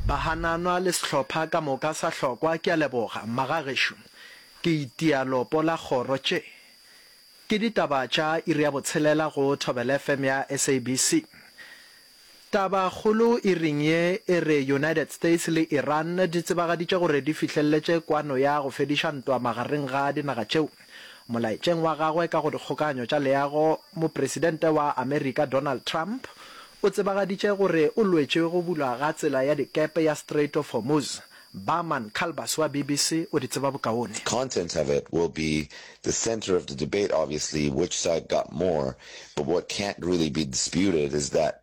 Bahananwa le sehlopha ka moka sa hlokwa ke a leboga mma ga gešo ke itia lopo la kgoro tše ke ditaba tša iri ya botshelela go thobela FM ya SABC taba kgolo iring ye e re United States le Iran di tsebagaditše gore di fihlelletše kwano ya go fediša ntwa magareng ga dinaga tšeo Molaetšeng wa gagwe ka go dikgokaganyo tša leago, Mopresidente wa Amerika Donald Trump o tsebagaditše gore o lwetše go bulwa ga tsela ya dikepe ya Strait of Hormuz. Barman Calbus wa BBC o di tseba bokaone. Content of it will be the center of the debate obviously, which side got more, but what can't really be disputed is that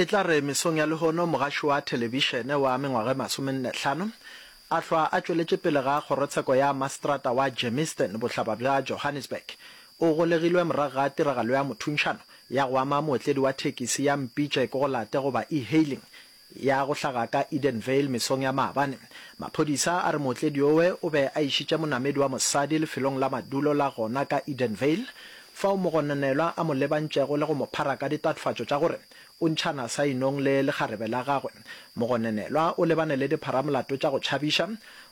E tla re mesong ya lehono mogaši wa thelebišene wa mengwaga e masomenne hlano a hlwa a tšweletše pele ga kgorotsheko ya maseterata wa Germiston, bohlaba bja Johannesburg, o golegilwe morago ga tiragalo ya mothunšano ya go ama mootledi wa thekisi ya mpitše ke go late goba e-hailing ya go hlaga ka Edenvale mesong ya maabane. Maphodisa a re mootledi yowe o be a išitše monamedi wa mosadi lefelong la madulo la gona ka Edenvale, Fao mogononelwa a mo lebantšego le go mo phara ka ditatofatšo tša gore o ntšhana sainong le lekgarebe la gagwe, mogononelwa o lebane le dipharamolato tša go tšhabiša,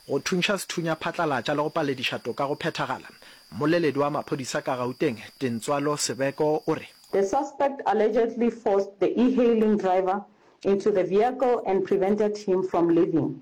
go thuntšha sethunya phatlalatša le go palediša toka go phethagala. Mmoleledi wa maphodisa ka Gauteng, Tintswalo Sebeko o re. The suspect allegedly forced the e-hailing driver into the vehicle and prevented him from leaving.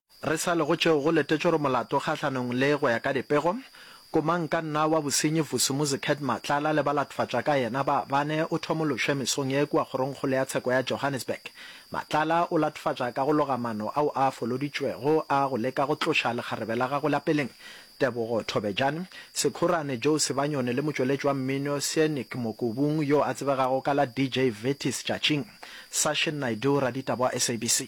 Re sa le go tšeo go letetšwe gore molato kgahlanong le go ya ka dipego, komankanna wa bosenyi Vusumuzi Kurt Matlala le balatofadtša ka yena ba bane o thomološwe mesong ye kua kgorongkgolo ya tsheko ya Johannesburg. Matlala o latofatša ka go loga mano ao a foloditšwego a go leka go tloša lekgarebe la gagwe la peleng Tebogo Thobejane, Sekhurane Joe Sebanyoni le motšweletši wa mmino Seanic Mokobung yo a tsebegago ka la DJ Vetis Tšatšing. Sashin Naidoo, raditaba wa SABC.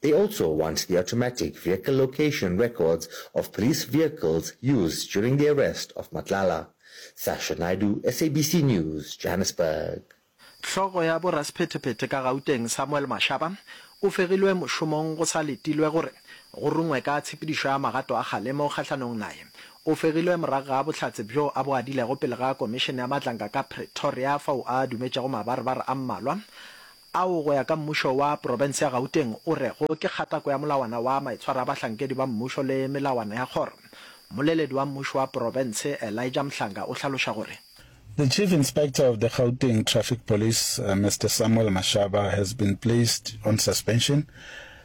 They also want the automatic vehicle location records of police vehicles used during the arrest of Matlala. Sasha Naidoo, SABC News, Johannesburg. Hlogo ya borasphetephete ka Gauteng Samuel Mashaba o fegilwe mošomong go sa letilwe gore go rungwe ka tshepedišo ya magato a kgalemo kgahlanong naye. O fegilwe morago ga bohlatse bjo a bo adilego pele ga komišene ya matlanka ka Pretoria fao a dumetšego mabarebare a mmalwa ao go ya ka mmušo wa profense ya Gauteng o rego ke kgatako ya molawana wa maitshwaro a bahlankedi ba mmušo le melawana ya kgoro. Mmoleledi wa mmušo wa profense Elijah Mhlanga o hlaloša gore. The Chief Inspector of the Gauteng Traffic Police, Mister Samuel Mashaba has been placed on suspension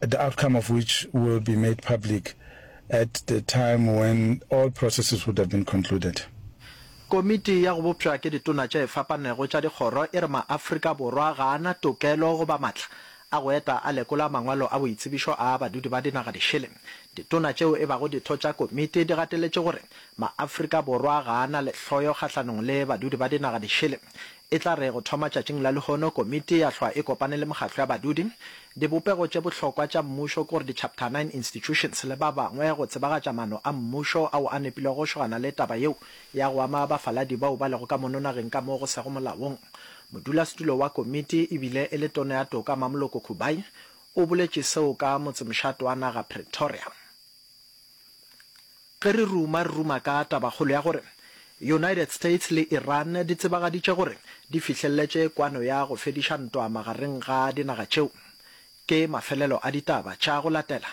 the outcome of which will be made public at the time when all processes would have been concluded. Komiti ya go bopšwa ke ditona tše fapanego tša dikgoro e re maAfrika Borwa ga a na tokelo goba matla a go eta a lekola mangwalo a boitsebišo a badudi ba dinaga dišele. Ditona tšeo e bago ditho tša komiti di gateletše gore maAfrika Borwa ga a na lehloyo kgahlanong le badudi ba dinaga dišele E tla re go thoma tšatšing la lehono komiti ya hlwa e kopane le mokgatlo ya badudi, dibopego tše bohlokwa tša mmušo kore di Chapter Nine Institutions le ba bangwe go tsebagatša maano a mmušo ao a nepilego go šogana le taba yeo ya go ama bafaladi bao ba lego ka mono nageng ka mo go sego molaong. Modulasetulo wa komiti e bile e le Tono ya Toka Mamoloko Khubai o boletše seo ka motsemšato wa naga Pretoria. Ge re ruma, re ruma ka tabakgolo ya gore United States le Iran di tsebagaditše gore di fihlelletše kwano ya go fediša ntwa magareng ga dinaga tšeo. Ke mafelelo a ditaba tša go latela,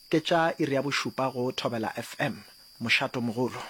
ke tša iri ya bošupa go Thobela FM, Mošato Mogolo.